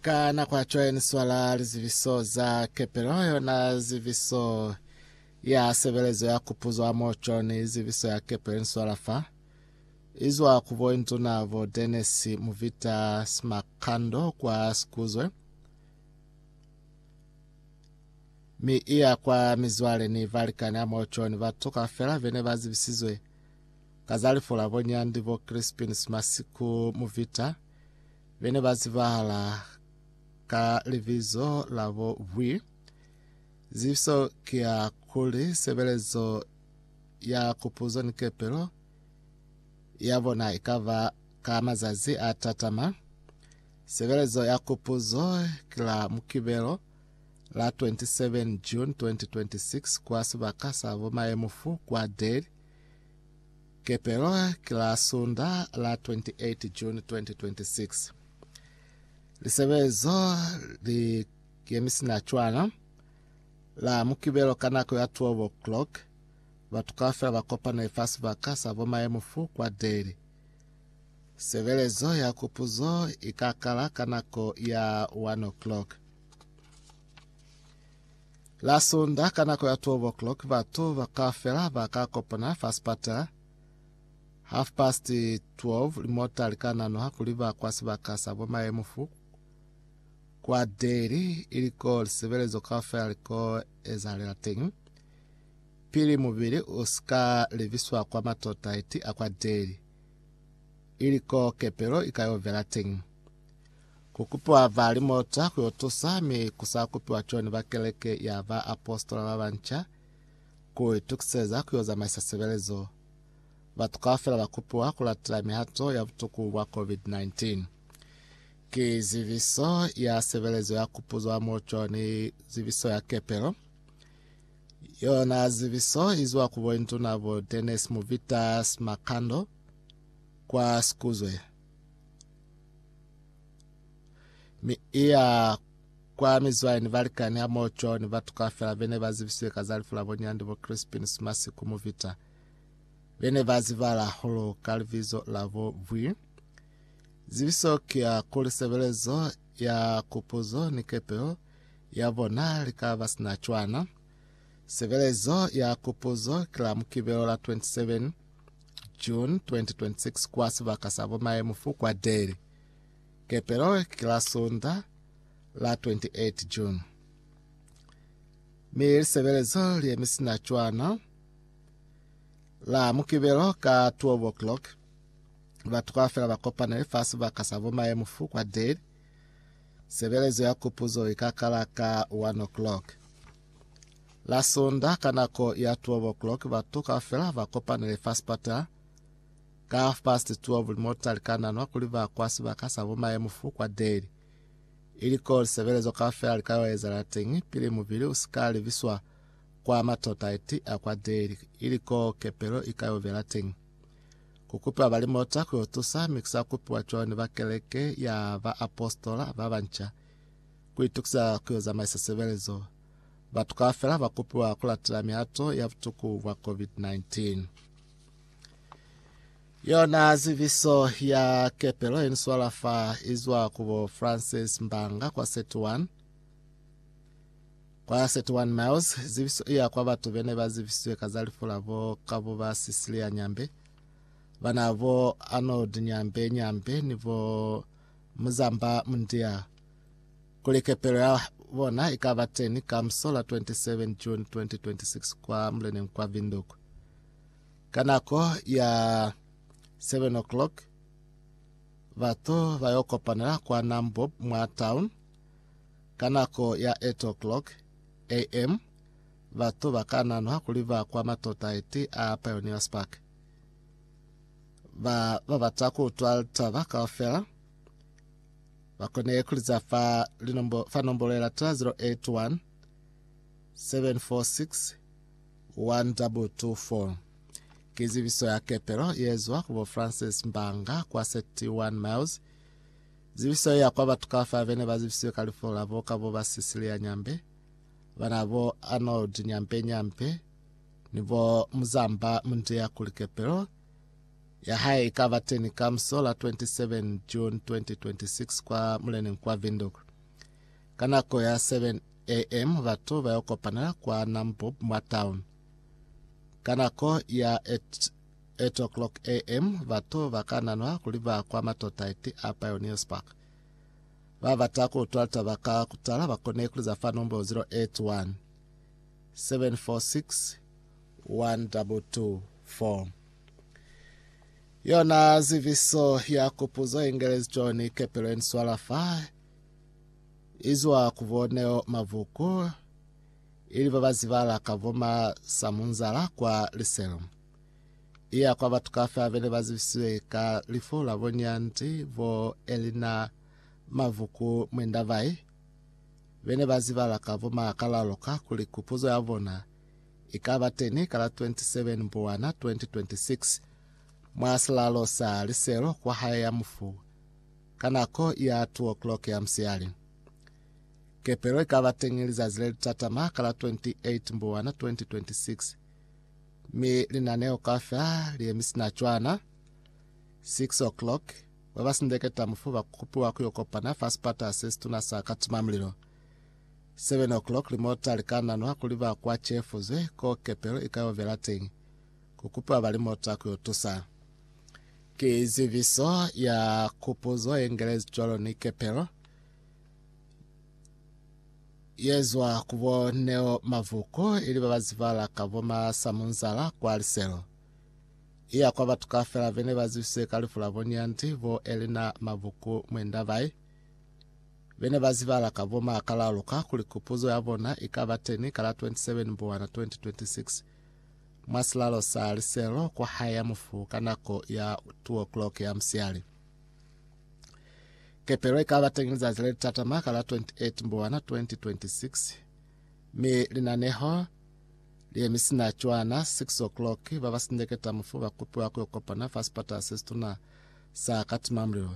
ka nako ya cwae ni swala lizibiso za kepelo yona zibiso ya sebelezo ya kupuzo a moco ni zibiso ya kepelo ni swala fa izwa ku boinduna bo Dennis Muvita Smakando kwa Sikuzwe mi iya kwa mizwale ni valikani a moco ni batu kafela bene ba zibisizwe ka za lifu la bonyandi bo Crispin Smasiku Muvita, be ne ba zibahala ka libizo la bo Bwi. Zibiso ki ya kuli sebelezo ya kupuzo ni kepelo ya bona i ka ba ka mazazi a tatama. Sebelezo ya kupuzo ki la Mukibelo la 27 June 2026 kwa sibaka sa bo Mayemufu kwa Deli, Kepelo ki la Sunda la 28 June 2026. Lisebezo li yemisina cwana la Mukibelo ka nako ya 12 o'clock. Batu kaufela ba kopane fa sibaka sa bo Mayemufu kwa Deli. Sebelezo ya kupuzo i ka kala ka nako ya 1 o'clock. La Sunda ka nako ya 12 o'clock batu kaufela ba ka kopana fa sipatala. Half past 12 limota li ka nanoha kuli ba kwa sibaka sa bo Mayemufu kwa Deli ili ko lisebelezo kaufela li ko ezahalela teñi pili mubili u sika lebiswa kwa matotaiti a kwa Deli ili ko kepelo i ka yo vela teñi. Ku kupiwa ba limota ku yo tusa, mi ku sa kupiwa cwani ba keleke ya baapositola ba banca ku itukiseza ku yo zamaisa sebelezo. Batu kaufela ba kupiwa ku latela mihato ya butuku bwa COVID-19. Ki zibiso ya sebelezo ya kupuzwa mo cwani zibiso ya kepelo. Yona zibiso i zwa ku Boinduna bo Dennis Muvitas Makando kwa Sikuzwe. Mi iya kwa mizwayo ni balikani hamoho co ni batu kaufela bene ba zibisiwe ka za lifu la bonyandi bo Crispin Sumasi ku Muvita. Bene ba zibala hulu ka libizo la bo Bwi. Zibiso ki ya kuli sebelezo ya kupuzo ni kepeo ya bona li ka ba sina cwana. Sebelezo ya kupuzo ki la mukibelo la 27 June 2026 kwa sibaka sa bomaemu fu kwa Delhi. Kepelo ki la Sunda la 28 June. Mi lisebelezo li emi sina cwana la mukibelo ka 12 o'clock batho ka fela ba kopanele fa sibaka sa bomaemu fu kwa Delhi. Sebelezo ya kupuzo ikakala ka 1 o'clock. La Sonda ka nako ya 12 o'clock batu kaufela ba kopanile fa sipata. Ka half past 12 limota li ka nanwa kuli ba kwa sibaka sa bo maye mufu kwa Dale. Ili ko lisebelezo kaufela li ka yo ezala teñi pili mubili u si ka libiswa kwa matota eti a kwa Dale, ili ko kepelo i ka yo bela teñi. Ku kupiwa ba limota ku yo tusa mi ku sa kupiwa cwalo ni ba keleke ya baapositola ba banca. Ku itukisa ku yo zamaisa sebelezo, Batu kaufela ba kopiwa ku latela mihato ya butuku bwa COVID-19. Yona ziviso ya kepelo ye niswala fa izwa ku bo Francis Mbanga kwa 31 kwa 31 miles ziviso iya kwa batu bene ba zivisizwe ka za lifu la bo kabo ba Cecilia Nyambe bana bo Arnold Nyambe Nyambe ni bo Muzamba Mundia kuli kepelo ya bona i ka ba teni ka muso la 27 June 2026 kwa muleneng kwa Windhoek ka nako ya 7 o'clock batu ba yo kopanela kwa Nambob mwa town ka nako ya 8 o'clock am batu ba ka nanwa kuli ba kwa matota eti a Pioneers Park ba ba bata ku utwa litaba kaufela Ba kone ku liza fa linombo, fa nombolo ye lata 081 746 1224. Ki zibiso ya kepelo ye zwa ku bo Francis Mbanga kwa 31 Miles. Zibiso ye ya kwa batu ka fa bene ba zibisiwe ka lifo la bo ka bo ba Cecilia Nyambe, bana bo Arnold Nyambe Nyambe ni bo Muzamba Mundiya kuli kepelo ya hae i ka ba teñi ka musola 27 June 2026 kwa Muleneng kwa Windhoek. Ka nako ya 7 am batu ba yo kopanela kwa Nambob mwa town. Ka nako ya 8 8 o'clock am batu ba ka nanwa kuli ba kwa matota eti a Pioneers Park. Ba bata ku utwa litaba ka kutala ba kone ku liza fa nombolo 081 746 1224. Yona ziviso ya kupuzo ingelezi John kepelo eniswala fa izwa ku boneo mavuku ili babazibala ka voma samunzala kwa liselo iya kwa batu kafe abene bazibisiwe ka lifu la bonyanti bo elina mavuku mwendabai bene bazibala ka voma kalaloka kuli kupuzo ya bona i ka ba teni ka la 27 Mbhuwana 2026 mwa silalo sa liselo kwa hae ya mufu ka nako ya 2 o'clock ya musiyali. Kepelo i ka ba teñi lizazi le li tatama ka la 28 Mbhuwana 2026 mi linaneo kaufela li yemisina cwana. 6 o'clock, ba ba sindeketa mufu ba kupiwa ku yo kopana fa sipata se situna sa Katimamulilo. 7 o'clock limota likananwa kuli ba kwa Chefuze ko kepelo ika yo vela teñi, kukupa ba limota kuyo tusa. Ki ziviso ya kupuzo yengelezi cwalo ni kepelo yezwa kubo Neo Mavuko ili babazivala ka bo Masamunzala kwa Liselo. Iya kwa batu kafela bene bazivise ka lifu la bo Nyandi bo Elina Mavuku Mwendabai. Be ne ba zibala ka bo maakalalu ka kuli kupuzo ya bona i ka ba teni ka la 27 Mbuwana 2026 mwa silalo sa liselo kwa hae ya mufu ka nako ya 2 o'clock ya musiali. Kepelo i ka ba teñi lizazi le litatama ka la 28 Mbuwana 2026 mi linaneho li yemi sina cwana 6 o'clock ba ba sindeketa mufu ba kupiwa ku yo kopana fa sipatala se situna sa Katimamulilo